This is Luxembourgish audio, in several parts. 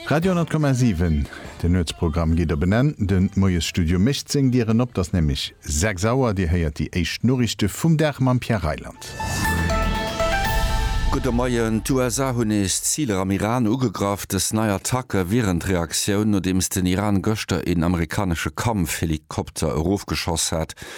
Radio 10,7, de Nuetsprogramm geet op en Enn. De Moiesstudio mécht seng Dieren op. 't ass nämlech 6 Auer. Dir héiert déi éischt Noriichte vum Dag mam Pierre Reyland. Gudde Moien. D'USA hunn nees Ziler am Iran ugegraff. Dës nei Attacke wieren d'Reaktioun, nodeems den Iran gëschter een amerikanesche Kampfhelikopter erofgeschoss hat.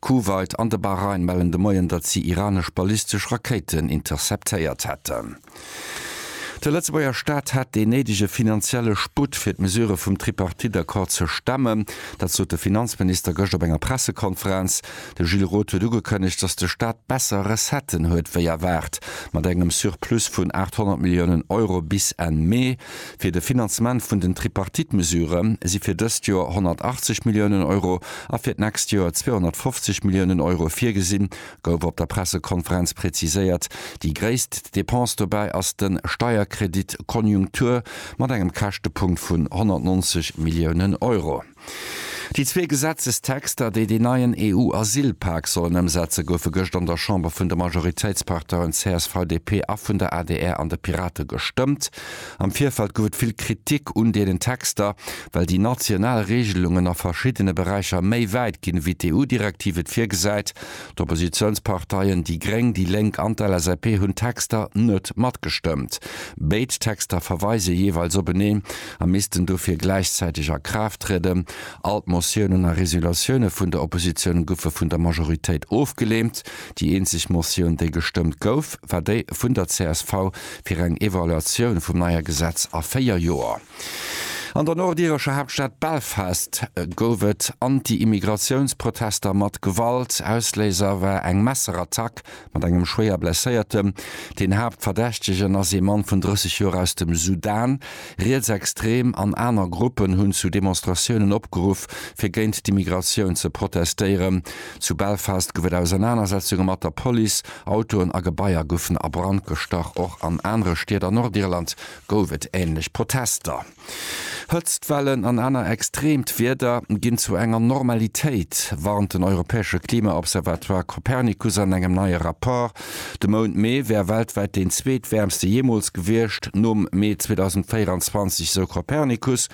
Kuwait an de Bahrain mellen de Moien, datt si iranesch ballistesch Rakéiten interceptéiert hätten. De Lëtzebuerger Staat hätt dee néidege finanzielle Sputt, fir d'Mesurë vum Tripartite-Accord ze stemmen. Dat sot de Finanzminister gëscht op enger Pressekonferenz. De Gilles Roth huet ugekënnegt, datt de Staat besser Recetten huet wéi erwaart, mat engem Surplus vun 800 Milliounen Euro bis Enn Mee. Fir de Finanzement vun den Tripartite-Mesurë si fir dëst Joer 180 Milliounen Euro a fir d'nächst Joer 250 Milliounen Euro virgesinn, gouf op der Pressekonferenz präziséiert. Déi gréisst Depense dobäi ass de Steierkredit Konjunktur mat engem Käschtepunkt vun 190 Milliounen Euro. Déi zwee Gesetzestexter, déi deen neien EU-Asylpak sollen ëmsetze goufe gëscht an der Chamber vun de Majoritéitsparteien csv, DP a vun der adr an de Pirate gestëmmt. Am Virfeld gouf et vill Kritik un deenen Texter, well déi national Reegelungen a verschiddene Beräicher méi wäit ginn, ewéi d'EU-Direktiv et virgesäit. D'Oppositiounsparteien déi gréng, déi lénk an d'LSAP hunn d'Texter net matgestëmmt. Béid Texter verweise jeeweils openeen, a missten dofir gläichzäiteg a Kraaft trieden. All d'Motiounen a Resolutioune vun der Oppositioun goufe vun der Majoritéit ofgeleent. Déi eenzeg Motioun, déi gestëmmt gouf, war déi vun der csv fir eng Evaluatioun vum neie Gesetz a véier Joer. An der nordirescher Haaptstad Belfast gouf et Anti-Immigratiounsprotester mat Gewalt. Ausléiser war eng Messerattack Mat engem schwéier Blesséiertem. Deen Haaptverdächtegen ass ee Mann vun 30 Joer aus dem Sudan. Rietsextrem an aner Gruppen hunn zu Demonstratiounen opgeruff, fir géint d'Immigratioun ze protestéieren. Zu Belfast gouf et Ausernanersetzunge mat der Police, Autoen a Gebaier goufen a Brand gestach. Och an anere Stied an Nordirland gouf et änlech Protester. Hëtztwellen an aner extreemt Wieder ginn zu enger Normalitéit, warnt den europäesche Klima-Observatoire Copernicus an engem neie Rapport. De Mount Mee wär weltwäit deen zweetwäermste jeemools gewiescht, nom Mee 2024, sou Copernicus.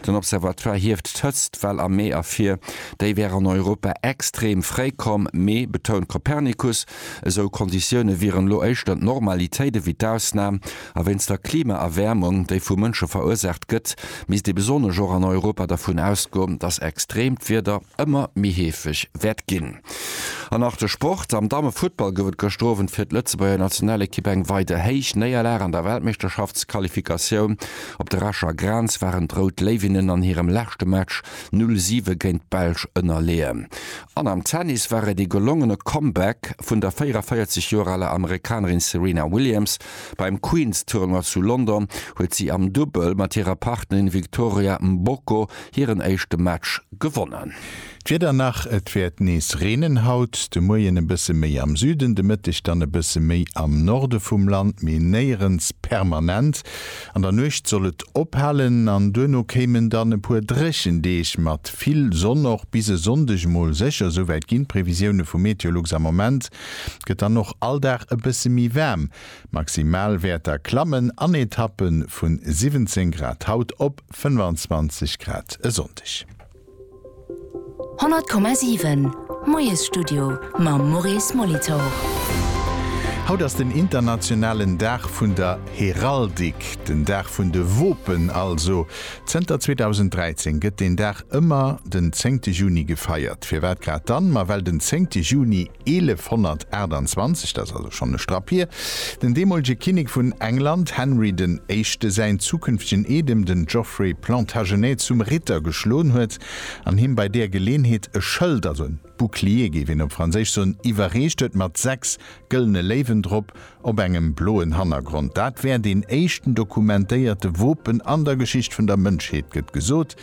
Den Observatoire hieft d'Hëtztwell am Mee ervir, déi wär an Europa extreem fréi komm. Mee, betount Copernicus, esou Konditioune wieren elo éischter d'Normalitéit ewéi d'Ausnam. A wéinst der Klimaerwäermung, déi vu Mënsche verursaacht gëtt, misst ee besonnesch och an Europa dervun ausgoen, datt extreemt Wieder ëmmer méi heefeg wäert ginn. An nach de Sport, Am Dammefuttball gouf et gëschter Owend fir d'Lëtzebuerger Nationalekipp eng weider héich Néierlag. An der Weltmeeschterschaftsqualifikatioun op der Escher Grenz waren d'Rout Léiwinnen an hirem leschte Match 0 siwe géint d'Belsch ënnerleeën. An am Tennis war et ee gelongene Comeback vun der 44 Joer aler Amerikanerin Serena Williams, Beim Queen's Tournoi zu London huet si am Dubbel mat hirer Partnerin Victoria Mboko hiren éischte Match gewonnen. D'Wieder nach, Et wäert nees reenen haut, de Moien e bësse méi am Süden, de Mëtteg dann e bësse méi am Norde vum Land, mee néierens permanent. An der Nuecht soll et ophalen an duerno kéimen dann e puer dréchen Deeg mat vill Sonn. Och bis e Sonndeg mol sécher, esouwäit ginn d'Previsioune vu Meteolux am Moment. gëtt dann och all Dag e bësse méi waarm. D'Maximalwäerter klammen an Etappe vu 17 Grad haut op 25 Grad e Sonndeg. 100,7 Moiesstudio mam Maurice Molitor. Haut ass den internationalen Dag vun der Heraldik, den Dag vun de Wopen also. Zënter 2013 gëtt deen Dag ëmmer den zéngte Juni gefeiert. Firwat grad dann? Ma well den zéngte Juni 1128, dat ass also schonn e Strapp hier, den deemolege Kinnek vun England, Henry den Éischte, säin zukünftegen Eedem, den Geoffrey Plantagenet, zum Ritter geschlon huet an him bei deer Geleenheet e Schëld, also en bouclier géif een op Franséisch soen, iwwerreecht huet mat sechs gëllene Léiwen drop, Op engem bloen Hannergrond. Dat wär deen éischten dokumentéierte Wopen an der Geschicht vun der Mënschheet, gëtt gesot.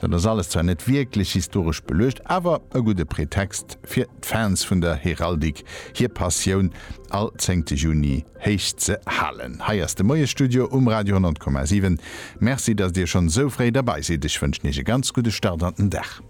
Dat ass alles zwar net wierklech historesch beluecht, awer e gudde Pretext fir d'Fans vun der Heraldik hir Passioun all zéngte Juni héich ze halen. Hei ass de Moiesstudio um Radio 100,7. Merci, datt Dir schonn esou fréi derbei sidd. Ech wënschen Iech e ganz gudde Start an den Dag.